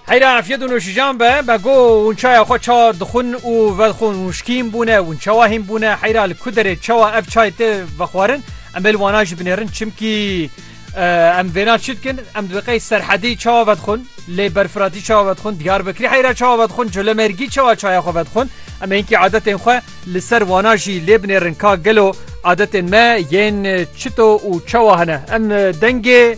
Heyra afiyet û nûşijan be be go hûn çaya xwe ça dixwin û vedixwin hûn şkîn bûne hûn çawa hîn bûne heyra li ku derê çawa ev çay tê vexwarin em ê li wana jî binêrin çimkî em vêna çi dikin em di qey serhedî çawa vedixwin lê berfiratî çawa vedixwin diyar bikirî heyra çawa vedixwin colemergî çawa çaya xwe vedixwin em hinkî adetên xwe li ser wana jî lê binêrin ka gelo adetên me yên çito û çawa hene em dengê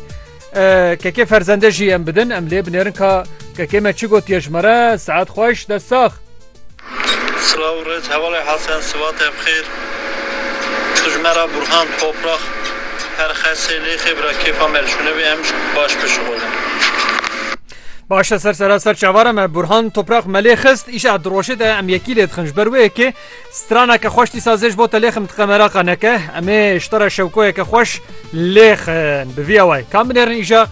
Kekê ferzende jî em bidin em lê binêrin ka kekê me çi gotiye ji me re saet xweş dest sax. Silav rêz hevalê Hesen sivatê bixêr tu ji me re Burhan Toprax her xesê lêxê bira kêfa me li şûne bê em ji baş bişuxulin. Baş e ser seraser çavara me Burhan Toprax me lê xist îşa di roşê de em yekî lê dixin ji ber wê yekê Straneke xweş dîsa zê ji bo te lêxin bi tiqe meraqa neke. Em ê ji te re şewkoyeke xweş lêxin. Bi vî awayê kam binêrin îja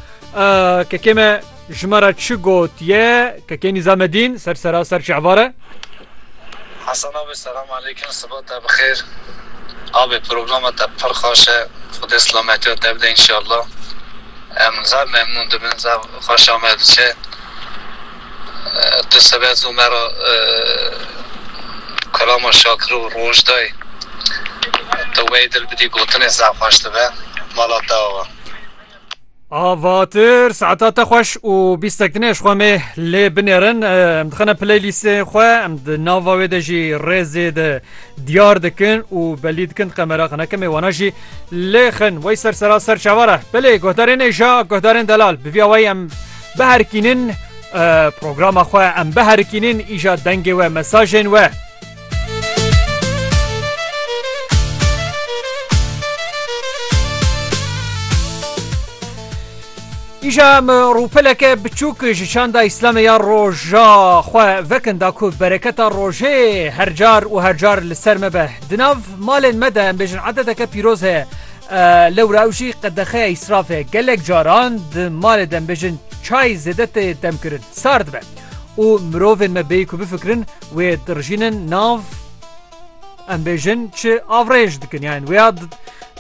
kekê me ji me re çi gotiye kekê Nîzamedîn ser sera ser çi evar e? Hasan abi selam aleykum siba te bixêr. Abi programa te pir xweş e. Xwedê silametiya te bide înşallah. Em zaf memnûn dibin, zaf xweşa me diçe. Tu sebe zû me re Kalama Şakir û Roj dayî. Tu wey dil bidî gotinê zaf xweş dibe. Mala te ava. Avatir saeta te xweş û bîstek dinê ji xwe mê lê binêrin. Em dixine playlîstê xwe em di nava wê de jî rêzê de diyar dikin û belî dikin qemera xineke mêwana jî lê xin wey ser sera ser çavar e. Belê guhdarên êja guhdarên delal bi vî awayî em Biherikînin programa xwe em biherikînin îja dengê we mesajên we. Îja em rûpeleke biçûk ji çanda îslamê ya roja xwe vekin da ku bereketa rojê hercar û hercar li ser me be. Di nav malên me de em bêjin edeteke pîroz heye. Lewra ew jî qedexeya îsrafê gelek caran di malê de em bêjin çay zêde tê demkirin sar dibe û mirovên me bêyî ku bifikirin wê dirijînin nav em bêjin çi avrêj dikin yan wê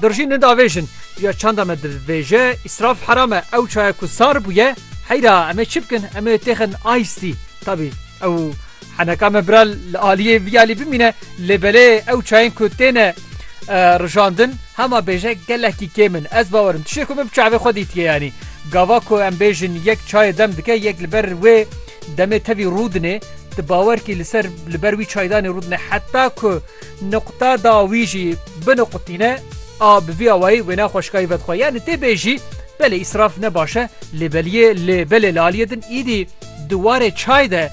dirijînin davêjin ya çanda me divêje îsraf heram e ew çaya ku sar bûye heyra em ê çi bikin em ê têxin aîstî tabî Ew heneka me bira li aliyê viyalî bimîne lê belê ew çayên ku têne rijandin hema bêje gelekî kêm in ez bawerim tişê ku min bi çavê xwe dîtiye yanî gava ku em bêjin yek çayê dem dike yek li ber wê demê tevî rûdinê di bawerkî li ser li ber wî çaydanê rûdine heta ku nuqta da wî jî binuqtîne a bi vî awayî wê naxweşkayî vedxwe yanî tê bêjî belê îsraf ne baş e lê beliyê lê belê li aliyê din îdî Di warê çay de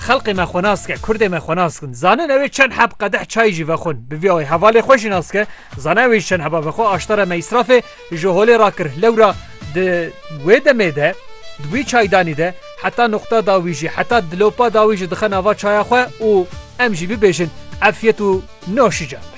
xelqê me xwe nas ke, kurdê me xwe nas kin. Zanin ew ê çend heb qedeh çayî jî vexwin. Bi vî awê hevalê xwe jî nas ke, zana ew ê ji çend heba vexwe aştara me îsrafê ji holê rakir. Lewra di wê demê de, di wî çaydanî de heta nuqta dawî jî, heta dilopa dawî jî dixe nava çaya xwe û em jî bibêjin efyet û noşîcan be.